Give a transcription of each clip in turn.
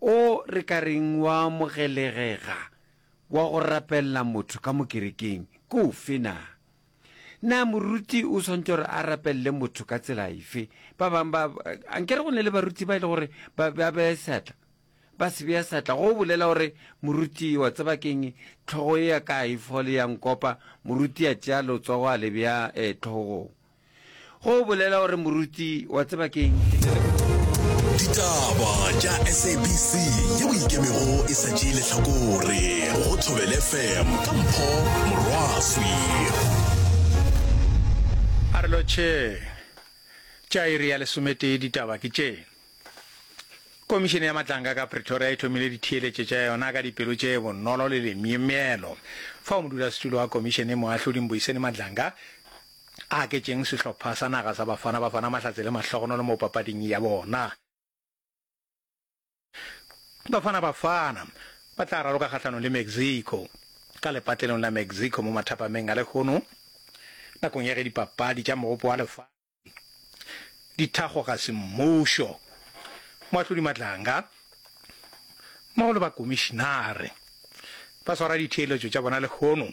O re ka reng wa amogelegega wa go rapelela motho ka mo kerekeng ke ofe na? Na moruti o swantše gore a rapelele motho ka tsela efe? Ba bang ba, a nkere go ne le baruti ba e le gore ba ba bea seatla, ba se bea seatla go bolela gore moruti wa tseba keng tlhogo e ya ka a e fole ya nkopa, moruti a tšea letsogo a le bea eh tlhogong. Go bolela gore moruti wa tseba ke eng? Ditaba tša SABC yeo ikemego e sa tšee lehlakore go Thobel FM ka Mpho Morwaswi. A re lotšhe tša iri ya lesometee ditaba ke tše. Komišene ya Matlanga ka Pretoria e thomile ditheeletše tša yona ka dipelo tše bonolo le lemyemyelo fao modulasetulo wa komišene moahlodi Mbuyiseni Madlanga a aketšeng sehlopha sa naga sa Bafana Bafana mahlatse le mahlogonolo mo papading ya bona. Bafana Bafana ba tla raloka kgahlanong le Mexico ka lepatlelong la Mexico mo mathapameng a lehono nakong ya ge dipapadi tša Mogopo wa Lefatshe di thakgwa ga semmušo. Moahlodi Matlanga mmogo le bakomišinare ba swara ditheeletšo tša bona lehono.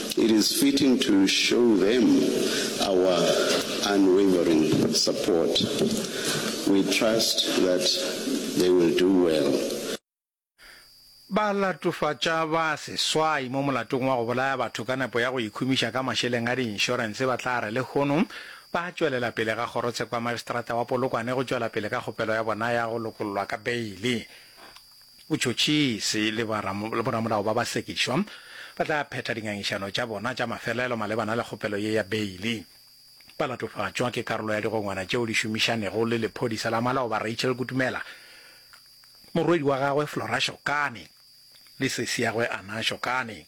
It is fitting to show them our unwavering support. We trust that they will do well. Balatofatša ba seswai mo molatong wa go bolaya batho ka nepo ya go ikhumiša ka mašeleng a diinšorense ba tla re lehono ba tšwelela pele ga kgorotsheko ya Magistrata wa Polokwane go tšwela pele ka kgopelo ya bona ya go lokollwa ka beile. Botšhotšhisi le boramolao ba basekišwa ba tla phetha dingangišano tša bona tša mafelelo malebana le kgopelo ye ya beili. Ba latofatšwa ke karolo ya digongwana tšeo di šomišanego le lephodisa la maloba Rachel Kutumela, morwedi wa gagwe Flora Shokane le sesiagwe Anna Shokane.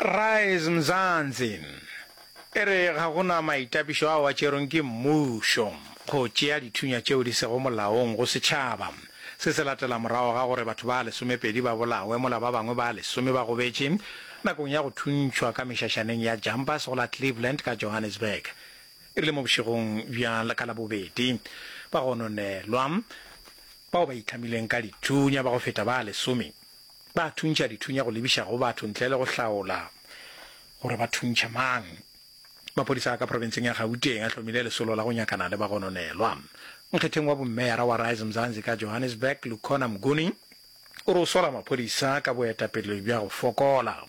Rise Mzansi e re ga go na maitapišo ao a tšerweng ke mmušo go tšea dithunya tšeo di sego molaong go setšhaba. Se se latela morago ga gore batho ba lesomepedi ba bolawe mola ba bangwe ba lesome ba gobetše nakong ya go thuntšhwa ka mešašaneng ya Jumpers go la Cleveland ka Johannesburg e rile mo bošegong bja ka Labobedi ba gononelwa bao ba itlhamileng ka dithunya ba go feta ba lesome. Ba thuntšha dithunya go lebiša go batho ntle le go hlaola gore ba thuntšha mang. Maphodisa a ka profenseng ya Gauteng a hlomile lesolo la go nyakana le bagononelwa. Nkgetheng wa bommeyara wa Rise Mzansi ka Johannesburg, Lukhona Mnguni, o re o sola maphodisa ka boetapele bja go fokola.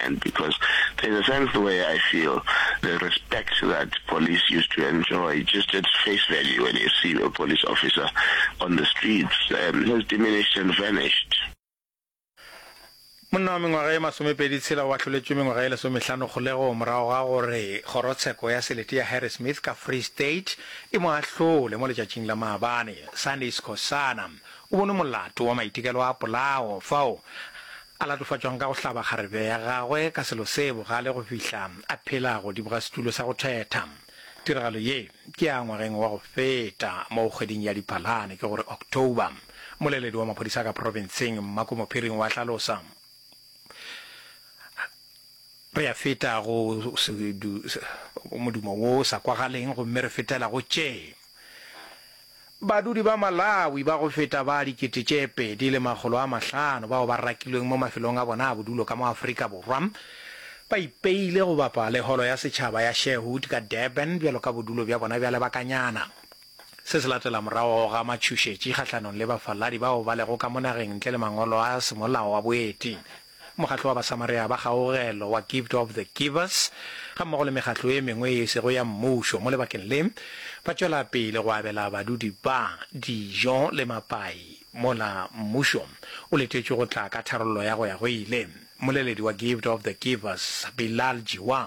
And because there's a sense the way I feel, the respect that police used to enjoy just at face value when you see a police officer on the streets um, has diminished and vanished. monna wa mengwaga e masomepedi tshela o ahloletšwe mengwaga e lesomehlano kgolego morago ga gore kgorotsheko ya selete ya harry smith ka free state e mo ahlole mo letšatšing la maabane sunday scosana o bonwe molato wa maitekelo a polao fao A latofatšwang ka go hlaba kgarebe ya gagwe ka selo se bogale go fihla a phela godimo ga setulo sa go thetha. Tiragalo ye ke ya ngwageng wa go feta moo kgweding ya Diphalane, ke gore October, moleledi wa maphodisa ka profenseng Mmako Mophiring wa hlalosa, Re ya feta go modumo wo sa kwagaleng gomme re fetela go tše. Badudi ba Malawi ba go feta ba dikete tše pedi le makgolo a mahlano bao ba rakilweng mo mafelong a bona a bodulo ka mo Afrika Borwa ba ipeile go bapa le Holo ya Setšhaba ya Sherwood ka Durban bjalo ka bodulo bja bona bja lebakanyana. Se se latela morago ga matšhošetši kgahlanong le bafaladi bao ba lego ka mo nageng ntle le mangolo a semolao a boeti. Mokgatlo wa Basamarea ba Kgaogelo wa Gift of the Givers gammogo le mekgatlo e mengwe ye e sego ya mmušo mo lebakeng le ba tšwela pele go abela badudi ba dijo le mapai mola mmušo o letetšwe go tla ka tharollo ya go ya go ile. Mmoleledi wa Gift of the Givers, Bilal Jiwa,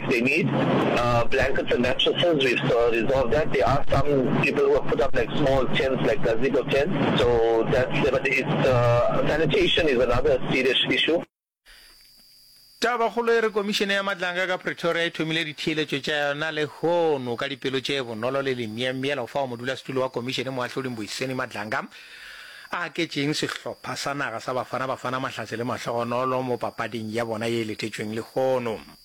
They need blankets and mattresses, we've resolved that. There are some people who have put up like small tents, like gazebo tents, so that's there, but it's sanitation is another serious issue. Tabakgolo e re Komišene ya Matlanga ka Pretoria e thomile ditheeletšo tša yona lehono ka dipelo tše bonolo le lemyemyelo fao modulasetulo wa Komišene Moahlodi Mbuyiseni Matlanga a aketšeng sehlopha sa naga sa Bafana Bafana Mahlatse le mahlogonolo mo papading ya bona ye e letetšweng lehono.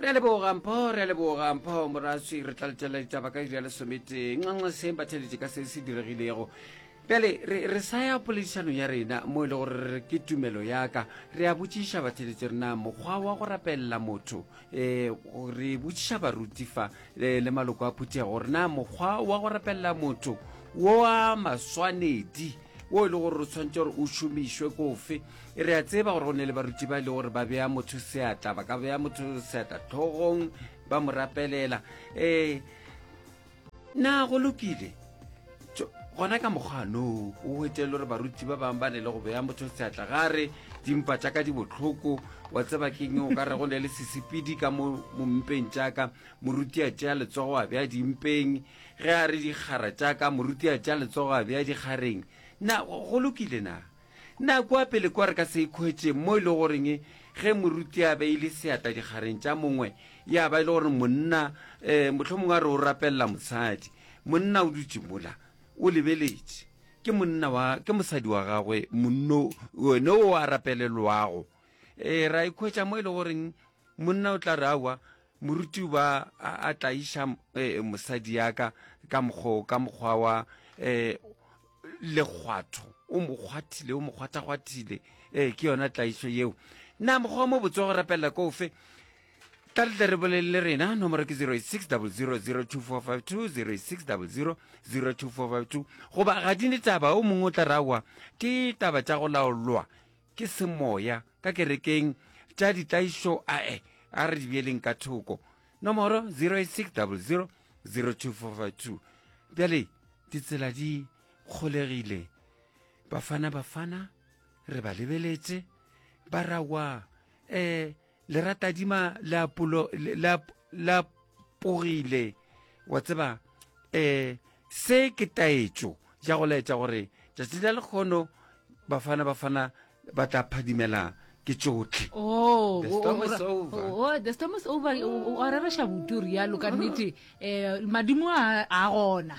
Re a leboga mpho, re a leboga mpho moratswi, re tla letšela ditaba ka iri ya lesometee. Nxenxeseng ba theletše ka se se diregilego. Bjale re, re sa ya poledišanong ya rena mo e le gore re re ke tumelo ya ka. Re a botšiša batheletše rena mokgwa wa go rapelela motho. E, re botšiša baruti fa le, le maloko a phuthego gore na mokgwa wa go rapelela motho wo a maswanedi wo e le gore o tshwanetse gore o šomišwe kofe. e re a tseba gore go ne le baruti ba e le gore ba bea motho seatla ba ka bea motho seatla tlhogong ba mo rapelela um na go lokile gona ka mokgwanoo o hwetele gore baruti ba bangwe ba ne le go bea motho seatla ga re dimpa tša ka di botlhoko wa tseba keng o ka re go ne le sesepedi ka mo mompeng jaaka moruti a tšea letsogo a bea dimpeng ge a re dikgara jaaka moruti a tšea letsogo a bea dikgareng na go lokile na Na kua pele kwa re ka se ikhwetšeng mo e le goreng ge moruti a beile seatla dikgareng tša mongwe ya ba e le gore monna um mohlomongwe a re o rapelela mosadi, monna o dutše mola o lebeletše, ke monna wa, ke mosadi wa gagwe monno one o a rapelelwago? um Ra ikhwetša mo e le goreng monna o tla re, Aowa, Moruti ba a, a tlaiša e, mosadi ya ka ka mokgo ka mokgwa wa e, lekgwatho o mo kgwathile o mo kgwathakgwathile e, ke yona tlaišo yeo na mokgwa mo botse wa go rapelela ko ofe tla le tle re bolele le rena nomoro ke 0600022452 0600022452 goba ga di ne taba o mongwe o tla rawa ke taba tša go laolwa Ke semoya ka kerekeng tša ditlaišo ae a re di beeleng ka thoko. Nomoro 08600 02452. Bjale ditsela di kgolegile. Bafana Bafana re ba lebeletše ba rawa eh le ratadima le apolo la pogile wa tseba eh se ke taetšo ya go laetša gore tšatši la lekgono bafana bafana ba tla phadimela ke tšotlhe oh, the storm is over oh, the storm is over o rereša butu rialo ka nnete um madimo a gona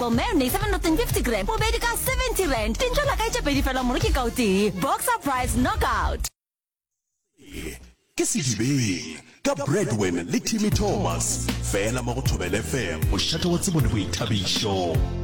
Bo marinade 750 g, bobedi ka 70 rand. Dintšo la ka e tše pedi fela moro ke ka o tee. Boxer Price Knockout. Se ke sedibeng ka Bradwin le Timmy Thomas fela mo go Thobela FM, mošate wa tsebo le boithabišo.